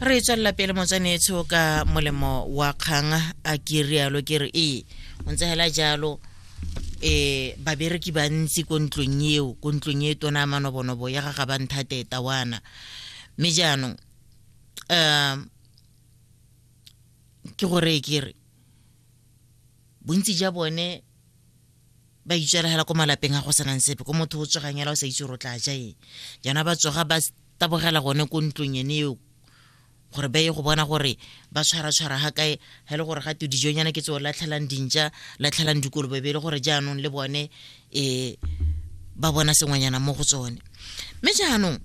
re tswelela pele motsanetsho ka molemo wa kgang a ke rialo ke re ee o ntse hela jalo eh babereki ba ntsi ko ntlong eo ko ntlong e tona manobonobo ya ga ga ba nthate tawana mme jaanong um ke gore ke re bontsi ja bone ba itswela hela ko malapeng a go senang sepe ko motho o tsogang hela o sa itse gore o tla ja eng jaana ba tsoga ba tabogela gone ko ntlong ene eo gore ba ye go bona gore ba tshwaratshwara ga kae ga e le gore ga te dijonyana ke tseo latlhelang dintša latlhelang dikolobe be e le gore jaanong le bone um ba bona sengwenyana mo go tsone mme jaanong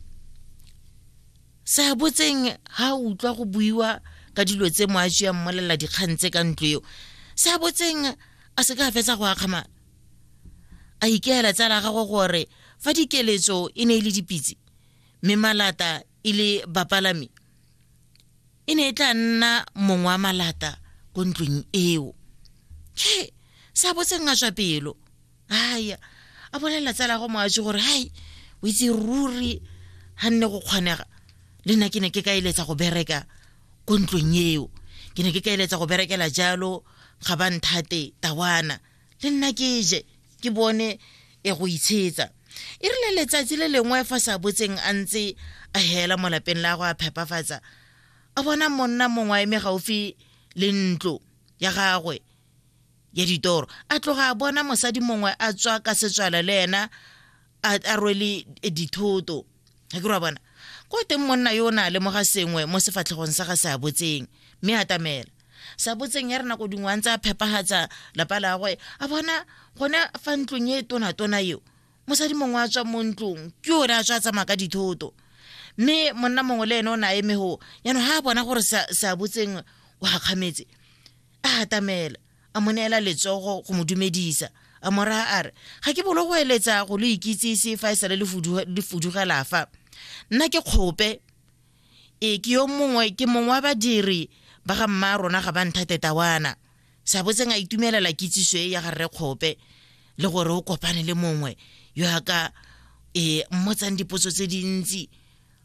sa botseng ga o utlwa go buiwa ka dilo tse mo a tseyang mmolelela dikgang tse ka ntlo eo sa botseng a se ka fetsa go akgama a ikeela tsala ya gagwe gore fa dikeletso e ne e le dipitse mme malata e le bapalami e ne e tla nna mongwe wa malata ko ntlong eo he sa botseng a tswa pelo aya a bolelela tsala go moatse gore hai o itse ruri ga nne go kgonega le nna ke ne ke ka eletsa go bereka ko ntlong eo ke ne ke ka eletsa go berekela jalo ga ba nthate tawana le nna ke je ke bone e go itshetsa e rile letsatsi le lengwe fa sa botseng a ntse a hela mo lapeng la go a phepafatsa a bona monna mongwe a eme gaufi le ntlo ya gagwe ya ditoro a tloga a bona mosadi mongwe a tswa ka setswala le ena a rwele dithoto ga ke ra bona ko teng monna yo o ne a lemoga sengwe mo sefatlhegong sa ga se a botseng mme a tamela sa botseng ya re nako dingwe a ntse a phepagatsa lapa la gagwe a bona gone fa ntlong e tonatona eo mosadi mongwe a tswa mo ntlong ke ore a tswa a tsamaya ka dithoto mme monna mongwe le ene o ne a emego yaanong ga a bona gore sa botseng o gakgametse a atamela a mo neela letsogo go mo dumedisa a mora a re ga ke bolo go eletsa go lo ikitsise fa e sale le fudugela fa nna ke kgope e ke yo mongwe ke mongwe wa badiri ba ga mma rona ga ba nthate tawana sa botseng a itumelela kitsiso e ya ga rre kgope le gore o kopane le mongwe yo a ka e mmotsang dipotso tse dintsi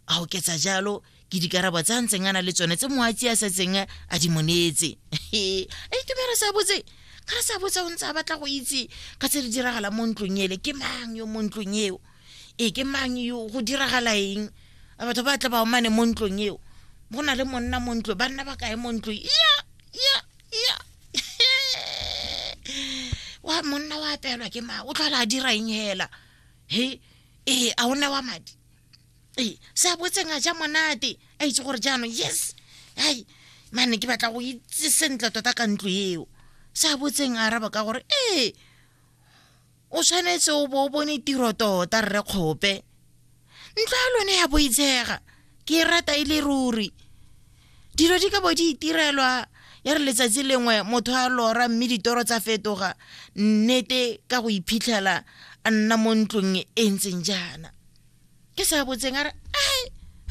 a oketsa jalo ke dikarabo tsa ntseng a na le tsone tse moatsi a setseng a di monetse a itumela sa botse ka re sa botse o ntse a batla go itse ka tse di diragalang mo ntlong ele ke mang yo mo ntlong eo e ke mang yo go diragala eng batho ba tla ba omane mo ntlong eo go na le monna mo ntlong banna ba kae mo ntlong ya ya ya wa monna wa apelwa ke ma o tlhola a dira eng hela he ee a o newa madi ee se a botseng a ja monate a itse gore jaanong yes hai mane ke batla go itse sentle tota ka ntlo eo se a botseng a araba ka gore ee o tshwanetse o bo o bone tiro tota rre kgope ntlo ya lone ya boitshega ke e rata e le ruri dilo di ka bo di itirelwa ya re letsatsi lengwe motho a lora mme ditoro tsa fetoga nnete ka go iphitlhela a nna mo ntlong e ntseng jaana ke sa botseng a re ai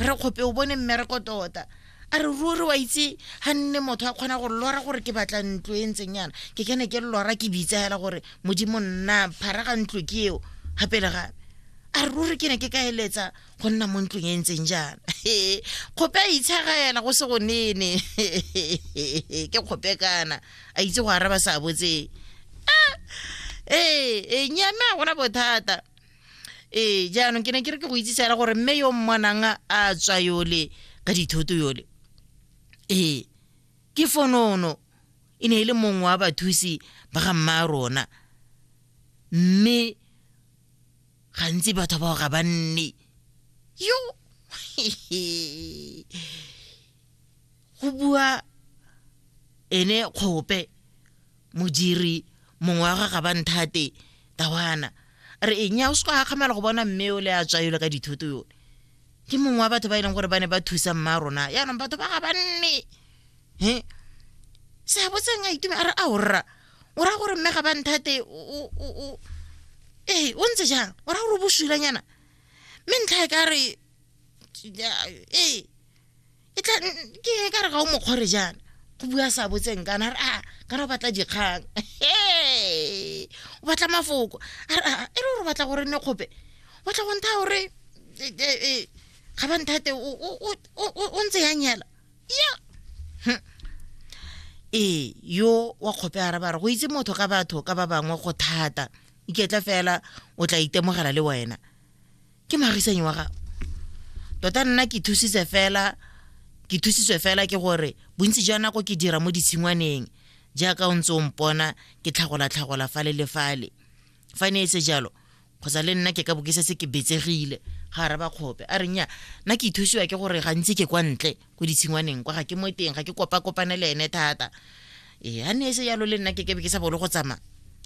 re kgope o bone mmereko tota a re ruri wa itse ga nne motho a kgona go lora gore ke batla ntlo e ntseng yana ke kene ke lora ke bitsa fela gore modimo nna phara ga ntlo ke eo gapele gape a re ruri ke ne ke ka eletsa go nna mo ntlong e ntseng jaana kgope a itshagaela go se go nene ke kgope kana a itse go araba sa botseng ee e nyame a gona bothata ee jaanong ke ne ke re ke go itsise fela gore mme yo mmwanang a tswa yole ka dithoto yole ee ke fonono e ne e le mongwe wa bathusi ba ga mma a rona mme gantsi batho bao ga ba nne yo go bua ene kgope modiri mongwe wa ga gabanthate tawana re eng ya o se go akgamela go bona mme o le a tswa yole ka dithoto yone ke mongwe wa batho ba e leng gore ba ne ba thusa mma rona yaanong batho ba ga banne he seabo tseng a itume a re a o rra o raya gore mme ga ba nthate ee o ntse jang o raya gore o bosulanyana mme ntlha e ka re ee e tla ke ka re ga o mokgore jaana go bua sa botseng kana re a ah, kana o batla dikgang o batla mafoko a re a ah, e re gore batla gore nne kgope batla go ntha gore e, e, e, ga ba nthate o ntse ya nyela ya hm. ee yo wa kgope a raba re go itse motho ka batho ka ba bangwe go thata iketla fela o tla itemogela le wena ke marisanyi wa gago tota nna ke thusitse fela ke thusitswe fela ke gore bontsi jwa nako ke dira mo ditshingwaneng jaaka o ntse o mpona ke tlhagola-tlhagola fale le fale fa ne e se jalo kgotsa le nna ke ka bokisa se ke betsegile ga araba kgope a reng ya nna ke ithusiwa ke gore gantsi ke kwa ntle ko ditshingwaneng kwa ga ke mo teng ga ke kopa-kopane le ene thata ee a ne e se jalo le nna ke ke be ke sa bolo go tsamaya